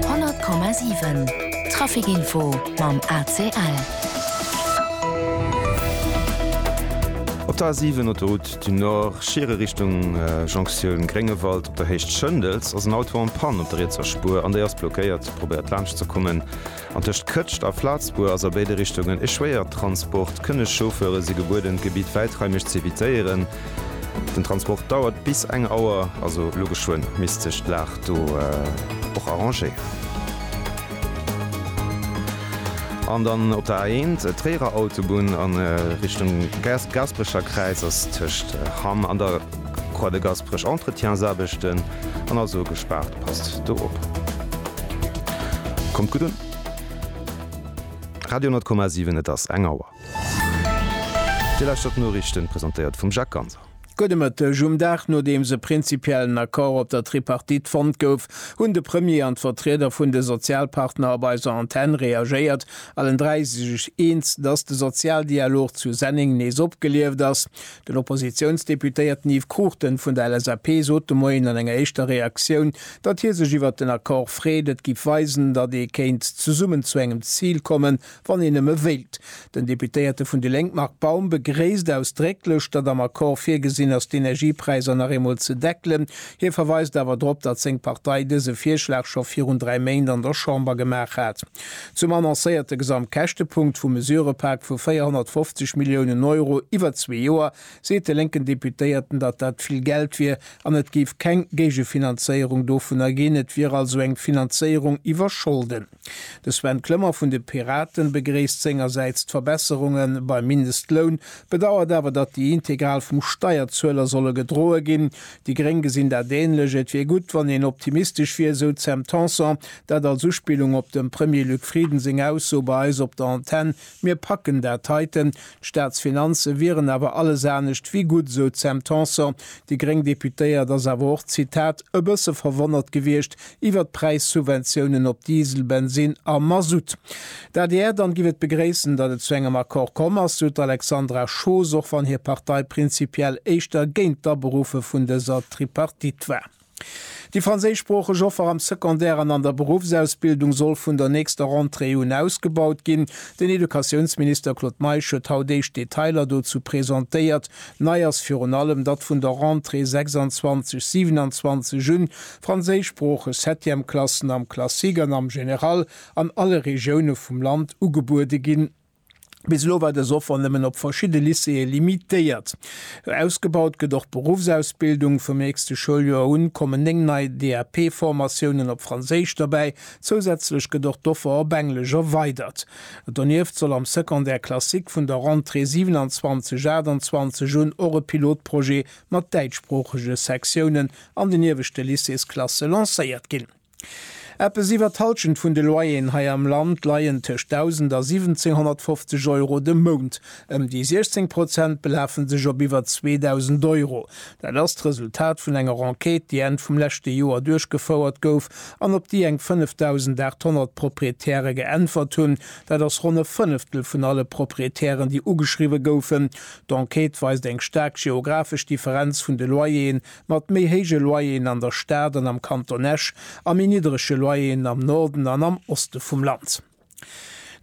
100,7 Traficinfo mam ACL. Op der A7, Autoroute du Nord, Schiere Richtung Jonktioun Gréngewald op der Héicht Schëndels ass en Auto en Panne op der rietser Spuer an déi ass blockéiert. Probéiert laanscht ze kommen. An tëscht Këtscht a Flatzbur ass a béide Richtungen e Schwéiertransport. Kënnegchauffeure si gebueden, d'Gebitt wäitraimeg ze evitéieren. Den Transport dauert bis eng Auer, also elo geschwënn. Misst sech d'Lag do och arrangéieren. An dann op der A1, Tréierer Autobunn a Richtung Gasperecher Kräiz ass tëscht Hamm an der. Croix de Gasperech Entretiensaarbechten an also gespaart. Passt do op. Kommt gutt un. Radio 10,7 Et ass eng Auer. Dir lauschtert d'Noriichten, presentéiert vum Jacques Ganser. Gudde Mëtteg. Um Dag nodeems e prinzipiellen Accord op der Tripartite fonnt gouf, hunn de Premier an d'Vertrieder vun de Sozialpartner op eiser Antenn reagéiert. Allen dräi si sech eens, dass de Sozialdialog zu Senneng nees opgelieft ass. Den Oppositiounsdeputéierten Yves Cruchten vun der LSAP sot de Moien an enger éischter Reaktioun, datt hie sech iwwert den Accord freet. Et giff weisen, datt ee kéint zesummen zu engem Zil kommen, wann een nëmme wéilt. Den Deputéierte vun déi Lénk Marc Baum begréisst ausdrécklech, datt am Accord virgesinn ass, d'Energiepräisser nach eemol ze deckelen. Hie verweist awer drop, datt seng Partei dëse Virschlag scho virun dräi Méint an der Chamber gemaach hat. Zum annoncéierte Gesamtkäschtepunkt vum Mesurëpak vu 450 Milliounen Euro iwwer zwee Joer seet de lénken Deputéierten, datt dat vill Geld wier an et géif keng Géigefinanzéierung dovunner ginn. Et wier also eng Finanzéierung iwwer Scholden. De Sven Clement vun de Piraten begréisst sengersäits d'Verbesserunge beim Mindestloun, bedauert awer, datt déi integral vum Steierzueler solle gedroe ginn. Déi Gréng gesinn dat änlech. Et wier gutt, wann een optimistesch wier, esou d'Sam Tanson. Dat als Uspillung op dem Premier Luc Frieden seng Ausso bei eis op der Antenn, Mir packen dat heiten. D'Staatsfinanze wieren awer alles anescht wéi gutt, esou d'Sam Tanson. Déi gréng Deputéiert ass awer och, Zitat, e bësse verwonnert gewiescht, iwwert d'Präissubventiounen op Diesel, Bensin a Masutt. D'adr dann giff et begréissen, datt et zu engem Accord komm ass, sou d'Alexandra Schoos, och wann hir Partei prinzipiell éischter géint d'Aberuffe vun dëser Tripartite war. Déi franséischsproocheg Offer am Secondaire an an der Beruffsausbildung soll vun der nächster Rentrée un ausgebaut ginn. Den Educatiounsminister Claude Meisch huet haut éischt Detailer dozou presentéiert. Nei ass virun allem, datt vun der Rentrée 26/27 un franséischsproocheg Septièmeklassen am Classique an am Général an alle Regioune vum Land ugebuede ginn. Bis elo war dës Offer nëmmen op verschidde Lycéeë limitéiert. Ausgebaut gëtt och d'Beruffsausbildung. Vum nächste Schouljoer un kommen 9 nei DAP-Formatiounen op Franséisch derbäi. Zousätzlech gëtt och d'Offer op Englesch erweidert. Donieft soll am Secondaire classique vun der Rentrée 27/28 un och e Pilotprojet mat däitschsproochege Sektiounen an den ieweschte Lycéesklasse lancéiert ginn. Eppes iwwer d'Halschent vun de Loyeren hei am Land leien tëscht 1.000 a 1.750 Euro de Mount. Ëm déi 16 Prozent belafe sech op iwwer 2.000 Euro. Dat ass d'Resultat vun enger Enquête, déi Enn vum leschte Joer duerchgefouert gouf an op déi eng 5.800 Proprietäre geäntwert hunn. Dat ass ronn e Fënneftel vun alle Proprietären, déi ugeschriwwe goufen. D'Enquête weist eng staark geographesch Differenz vun de Loyeren. Mat méi héije Loyeren an der Stad an am Kanton Esch a méi niddrege Loyeren am Norden an am Oste vum Land.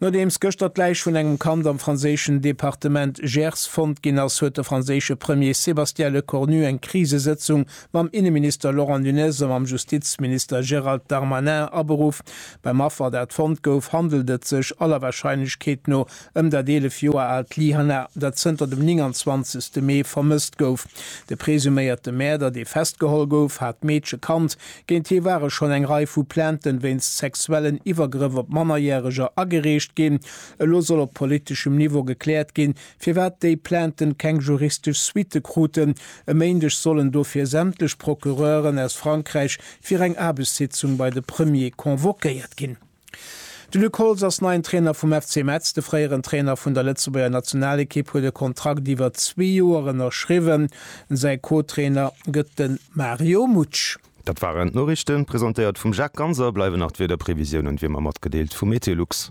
Nodeems gëschter d'Läich vun engem Kand am franséischen Departement Gers fonnt ginn ass, huet de franséische Premier Sébastien Lecornu eng Krisesëtzung mam Inneminister Laurent Nunez a mam Justizminister Gérald Darmanin aberuff. Beim Affer, dat fonnt gouf, handelt et sech aller Warscheinlechkeet no ëm dat 11 Joer aalt Lyhanna, dat zënter dem 29 Mee vermësst gouf. De presuméierte Mäerder, dee festgeholl gouf, hat d'Meedche kannt. Géint hie ware schonn eng Rei vu Plainten wéinst sexuellen Iwwergrëff op Mannerjäreger agereecht ginn. Elo soll op politeschem Niveau gekläert ginn, firwat déi Plainten keng juristesch Suitte kruten. E Méindeg sollen dofir sämtlech Procureuren aus Frankräich fir eng Aarbechtssitzung bei de Premier convoquéiert ginn. De Luc Holtz ass neien Trainer vum FC Metz. De fréieren Trainer vun der Lëtzebuerger Nationalekipp huet e Kontrakt iwwer zwee Joer ënnerschriwwen. Säi Co-Trainer gëtt de Mario Mutsch. Dat waren d'Noriichten, presentéiert vum Jacques Ganser. Bleiwen nach d'Wiederprevisiounen, wéi ëmmer, matgedeelt vu MeteoLux.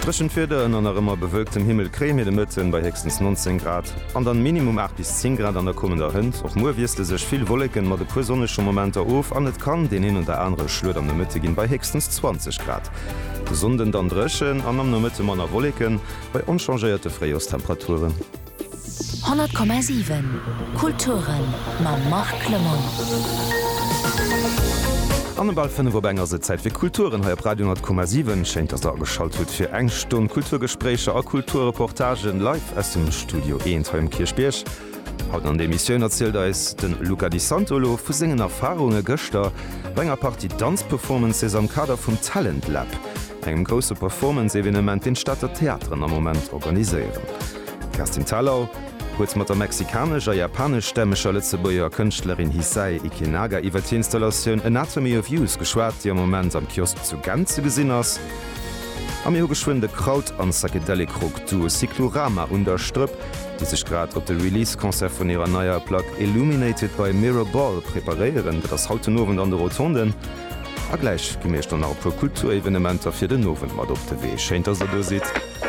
Dréchent Wieder ënner nach ëmmer bewölktem Himmel kréie mir de Mëtten bei héchstens 19 Grad. An dann minimum 8 bis 10 Grad an der kommender Hënt. Och muer wiessle sech vill Wolleken mat e puer sonnege Momenter of an et kann deen een oder anere Schluet am Nomëtte ginn bei héchstens 20 Grad. De Sonnden dann dréchen an am Nomëtte manner Wolleken bei onchangéierte Fréijorstemperaturen. 100,7 Kulturen mam Marc Clement. An um bal 5 op eng ass et Zäit fir Kulturen hei op Radio 100,7. Schéin dass der ageschalt hutt fir eng Stonn Kulturgespréicher a Kulturreportagen live. Aus dem Studio Eent hei um Kierchbierg. Haut an der Emissioun erzielt eis de Luca Di Santolo vu sengen Erfarunge gëschter bei enger Partie Danzperformances am Kader vum Talent Lab, engem grousse Performance-Evenement, deen d'Stater Theateren am Moment organiséieren. D'Kerstin Thalau huet mat der mexikanesch a japaneschstämmeger Lëtzebuerger Kënschtlerin Hissae Ikenaga iwwert hir Installatioun Anatomy of Use geschwat, déi am Moment am Kiosk zu Gent ze gesinn ass. A mir hu geschwënn de Kraut an Psychedelic Rock Duo Cyclorama un der Strëpp, déi sech grad op de Release Concert vun hirer neier Plack Illuminated by Mirror Ball preparéieren. Dat ass haut den Owend an de Rotonden. A gläich gi mir iech dann nach e puer Kulturevenementer fir den Owend mat op de Wee. Schéin dass der do sidd.